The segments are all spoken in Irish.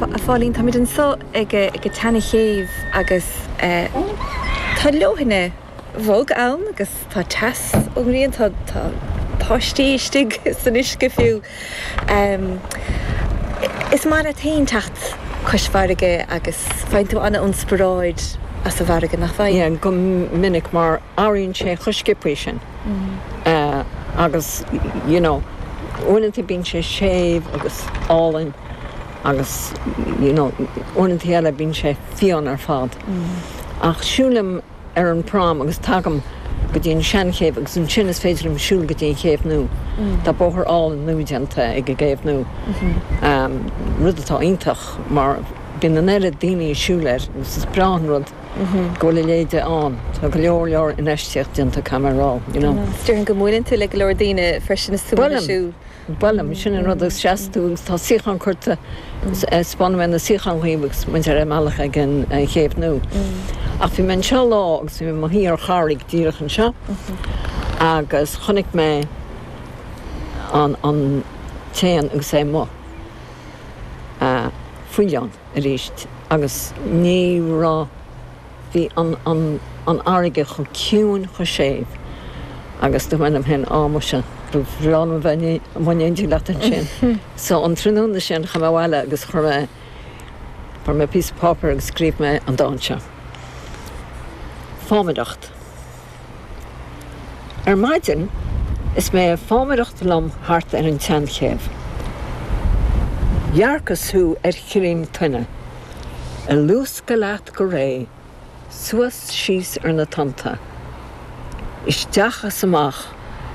Bhuel, a Phauline, táimid anseo ag an tseana chéibh agus tá leoithne bhog ann agus tá teas ón ngrian, tá páistí istigh san uisce fiú. Is maith leat féin teacht cois farraige agus faigheann tú ana inspioráid as an bhfarraige, nach bhfaigheann? Go minic, mar athraíonn sé chomh sciopthaí sin. agus you know uaireanta bíonn sé séimh agus álainn agus you know uaireanta eile bíonn sé fiáin ar fad ach siúilim ar an prom agus tagaim go dtí an seanchéibh agus ansin is féidir liom siúl go dtí an chéibh nua. Tá bóthar álainn nua déanta ag an gcéibh nua, rud atá iontach mar bíonn an oiread daoine ag siúl air agus is breá an rud go bhfuil a leithéide ann. Tá go leor leor infheistíocht déanta caithfidh mé a rá, you know. Déarfainn go mbuaileann tú le go leor daoine freisin is tú ag Buailim, muise, buailim. Sin an rud agus seas tú agus tá suíocháin curtha, 'speánfaidh mé na suíocháin dhaoibh agus muid ar an mbealach ag an gcéibh nua. Ach bhí mé anseo lá agus bhí mé i mo shuí ar charraig díreach anseo agus chonaic mé an, an, t-éan agus é amuigh, faoileán. arís agus ní raibh, bhí an fharraige chomh ciúin, chomh séimh agus dúirt mé liom féin, á muise, ba bhreá liom a bheith amuigh in éindí leat ansin. So an tráthnóna sin chuaigh mé abhaile agus chuir mé, chuir mé píosa páipéir agus scríobh mé an dán seo. Fámaireacht. Ar maidin, is mé ag fámaireacht liom thart ar an tSeanchéibh, dhearcas thú ar chírín toinne, ag luascadh leat go réidh, suas síos ar na tonnta, isteach is amach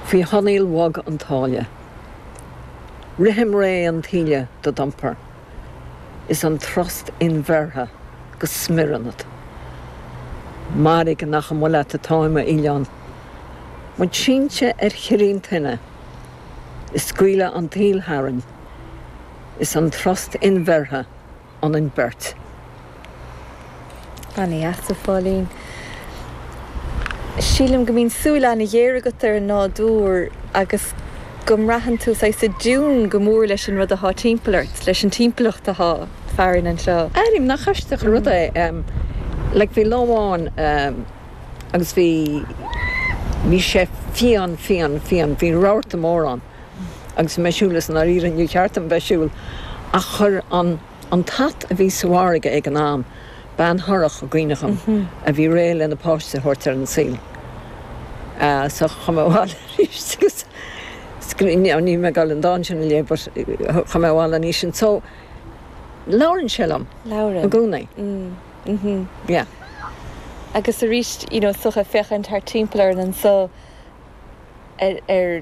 faoi thonnaíl bhog an tsáile. Rithim réidh an taoille do d'iompar. is an trust inbheirthe go smior ionat. Mairg nach amuigh leat atáim, a fhaoileáin. Muid sínte ar chírín toinne, ag scaoileadh an tsaoil tharainn, is an trust inbheirthe ionainn beirt. Ana dheas a Phauline. Sílim go mbíonn súil ana ghéar agat ar an nádúr agus go mbraitheann tú saghas i dtiún go mór leis an rud atá timpeall ort, leis an timpeallacht atá farainn anseo. Airím nach aisteach an rud é like bhí lá amháin agus bhí, bhí sé fiáin, fiáin, fiáin, bhí rabharta mór ann agus bhí mé ag siúl is i ndáiríre níor cheart dom bheith ag siúl ach chuir an, An t-at a bhí sa bhfarraige ag an am, bean thorrach i gcuimhne dom a bhí réidh lena páiste a thabhairt ar an saol. So, chuaigh mé abhaile aríst agus scríobh, níl mé ag dul an dán sin a léamh but chuaigh mé abhaile an oíche sin so labhrann sé liom i gcónaí. Labhrann. Yeah. Agus aríst, you know, so ag féachaint thart timpeall orainn anso ar, ar.